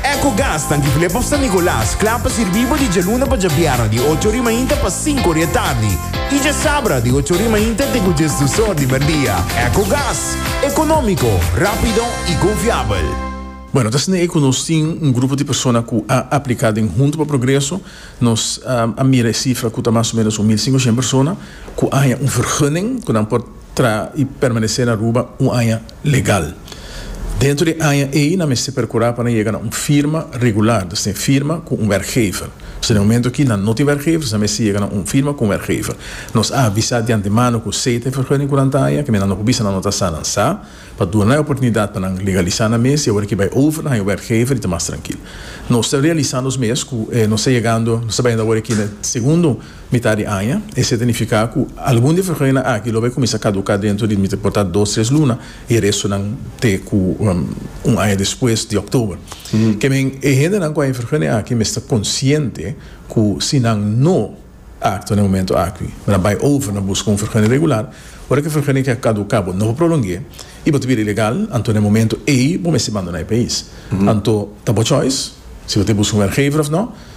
Ecogas na Diglip of San Nicolas kla pa sirbi bo di djaluna pa djabièrnè di ocho ori mainta pa sinku ori e tardi i djasabra di ocho ori mainta te ku djes dus or di merdia. Ecogas, ekonómiko, rápido i konfiabel. Bueno, ta asina ei ku nos tin un grupo di persona ku a apliká den Hunto pa Progreso. Nos a mira e sifra ku ta mas o ménos un mil singoshen persona ku a haña un vergunning ku nan por traha i permanesé na Aruba un aña. legal. Dentro di e aña ei nan mester percura pa nan yega na un firma regular, dus tin firma cu un werkgever. Pasobra den e momento aki nan no tin werkgevers, nan mester yega na un firma cu un werkgever. Nos a avisa di antemano cu sea ta e vergunning cu nan ta haña, kimen nan no por bisa nan no ta sa, nan sa, pa duna nan e oportunidad pa nan legalisa nan mes y awor aki bay over, nan haña werkgever y ta mas trankil. Nos ta realisa nos mes cu nos ta yegando, nos ta bayendo awor aki na e segundo. Mitá di aña, esei ta nifiká ku algun di e frecuentenan aki lo bai kuminsá kaduká dentro di mester por ta dos tres luna i e restonan te ku un aña despues di oktober. Ke men e hendenan ku a e frecuente aki mester konsiente ku si nan no aktua na e momento aki, nan bai over na buska un frecuente regular, ora ku e frecuente aki a kaduká bo no por prolong'é i bo ta bira ilegal, anto na e momento ei bo mester bandoná e pais. Anto ta bo choice si bo ta buska un werkgever òf nò.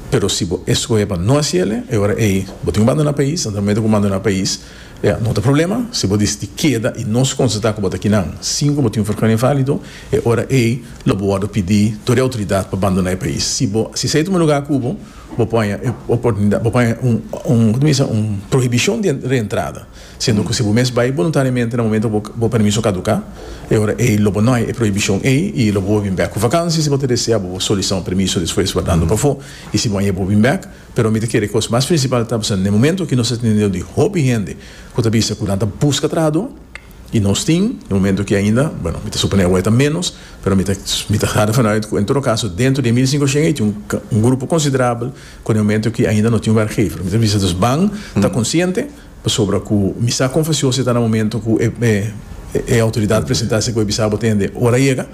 Pero si bo escohe pa no haci el'e, e ora ey bo tin cu bandona pais, anto nan mete cu bandona pais, ea no ta problema, si bo disiti keda y nos constata cu bo ta kinan sin cu bo tin un vergonia valido, e ora ey lo bo wordo pidi door e autoridad pa bandona e pais. Si bo haci esey tuma lugar cubo, bo por haña e oportunidad, bo por haña un, un, como ta bisa, un prohibicion di reentrada. Siendo cu si bo mes bay boluntariemente na momento cu bo permiso caduca, e ora ey lo bo no hay e prohibicion ey y lo bo bo bin bek cu vakantie. Si bo ta desea bo bo solicita un permiso despues wardando pafo y si bo a yega bo bin bek. Pero mi ta kere cos mas principal ta pasobra n'e momento aki nos ta tene deo di hopi hende cu ta bisa cu nan ta busca trahador y nos tin n'e momento aki ainda, bueno mi ta supone awe ta menos, pero mi ta mi ta hada vanuit cu en todo caso dentro di e mil cincoshien ey tin un un grupo considerabel cu n'e momento aki ainda no tin werkgever. Mi ta bisa dus ban ta consciente. Pasobra ku mi sa konfesion si ta na momentu ku e outoridat presentá esei ku e bisá bo tende, ora a yega.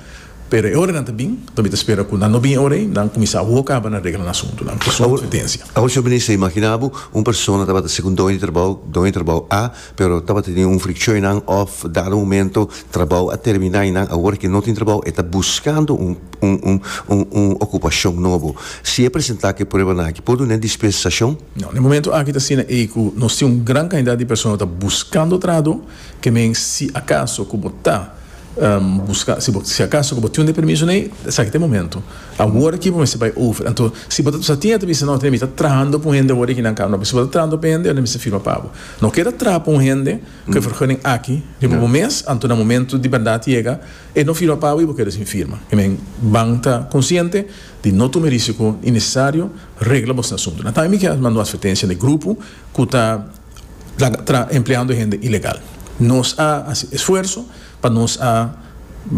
Pero e ora nan ta bin, mi ta spera ku nan no bin e ora ei, nan kuminsá a woka aba na regla nan asuntunan. Ku su konsistensia. Awor si bo minister, imaginá bo un persona tabata ser ku un doño di trabou, doño di trabou A, pero tabata teni un frikshon einan òf dado momento trabou a terminá einan, awor ke no tin trabou e ta buskando un un un okupashon nobo. Si e presentá ku e pruebanan aki por dun'é dispensacion? No, na e momento aki ta asina ei ku nos tin un gran kantidat di persona ku ta buskando trado, ke men si akaso ku bo ta buska, si bo si akaso ku bo tin un de permiso nei, esaki ta e momento, awor aki bo mester bai over. Anto si bo ta sa tin e ta bisa, no, mi ta trahando pa un hende awor aki nan kaba, no, pero si bo ta trahando pa e hende, nan mester firma pabo. No keda traha pa un hende ku e vergunning aki riba bo mes, anto na momento di bèrdat yega e no firma pabo i bo keda sin firma. Ke men ban ta konsiente di no tuma e risiko innesesario. Regla bos na suntu. Na taimi ki a mando atvertensia na e grupo ku ta laga empleando e hende ilegal. Nos a hasi esfuerso pa nos a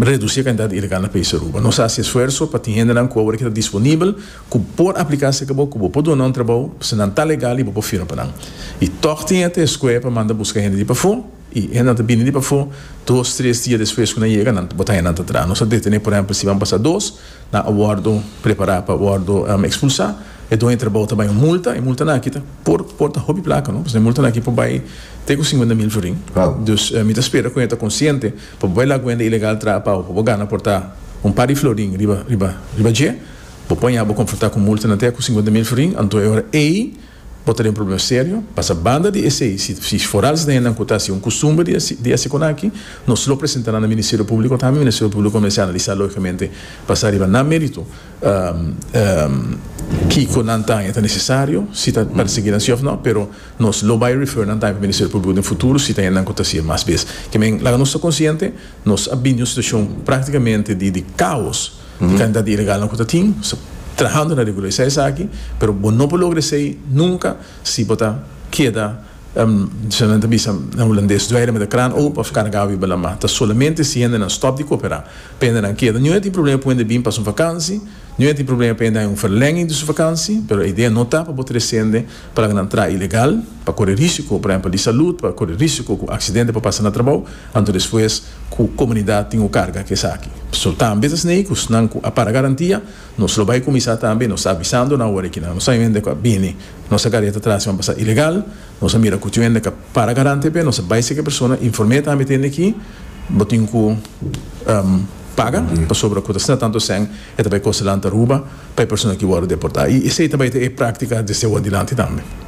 redusi e kantidat di ilegal na país Aruba. Nos a hasi esfuerso pa tin hendenan ku awor a keda disponibel ku por apliká serka bo ku bo por duna un trabou pasobra nan ta legal i bo por firma pa nan. I tòg tin ate eskué pa manda buska hende di pafó. I hennan ta bini di pafó, dos, tres dia despues ku nan yega, nan ta botá hennan ta tras. Nos a detené, por ehèmpel, si ban pasa dos, nan a wòrdu prepará pa wòrdu ekspulsá. E doño di trabou ta bai un multa, e multanan akí ta por por ta hopi plaka, no, pasobra e multanan akí por bai te ku singuenta mil florin. Dus, mi ta spera ku nan ta konsiente, pa bo bai la guenda ilegal traha pau, pa bo gana por ta un par di florin riba riba riba dje, bo por haña bo konfrontá ku multanan te ku singuenta mil florin, anto e ora ei, Bo ta den problem serio, pasa banda di esei, si for al snenan ku ta hasi un kustumber di hasi ekonaki, nos lo presenta nan na Ministerio Públiko, ta mi Ministerio Públiko ku mester analisá lógikamente basá riba nan mérito kiko nan ta haña ta nesesario, si ta persiguí nan sí òf nò, pero nos lo bai refer nan ta haña pa Ministerio Públiko den futuro si ta haña nan ku ta hasi e mas bes. Ke men, laga nos ta konsiente, nos a bini un situashon práktikamente di kaos. di cantidad di ilegalnan cu ta tin trahando na regulariza esaki pero bo no por logra esey nunca si bo ta keda kiko nan ta bisa na hulandes dweilen meda kraan open of carga wiba lama ta solamente si hendenan stop di coopera pa hendenan keda niun a tin problema p'e bin pa su vakansi niun a tin problema p'e hay un verlenging di su vakansi pero e idea no ta pa bo trece hende pa laga nan traha ilegal pa core risico por ehempel di salud pa core risico cu accidente por pasa na trabou Anto despues ku komunidat tin ku karga ku esaki. So tambe ta snei ku snan ku a para garantia, nos lo bai kuminsá tambe nos ta avisando nan wor e kinan nos a hende ku a bini nos a kareta tras i ban pasá ilegal, nos a mira ku tin un hende ku a para garante p'e nos a bai seki persona inform'é tambe tende ki bo tin ku paga pasobra ku ta sna tantu esèn e ta bai kosa lanta Aruba pa e persona ki wòrdu deportá i esei ta bai ta e práktika desde awo dilanti tambe.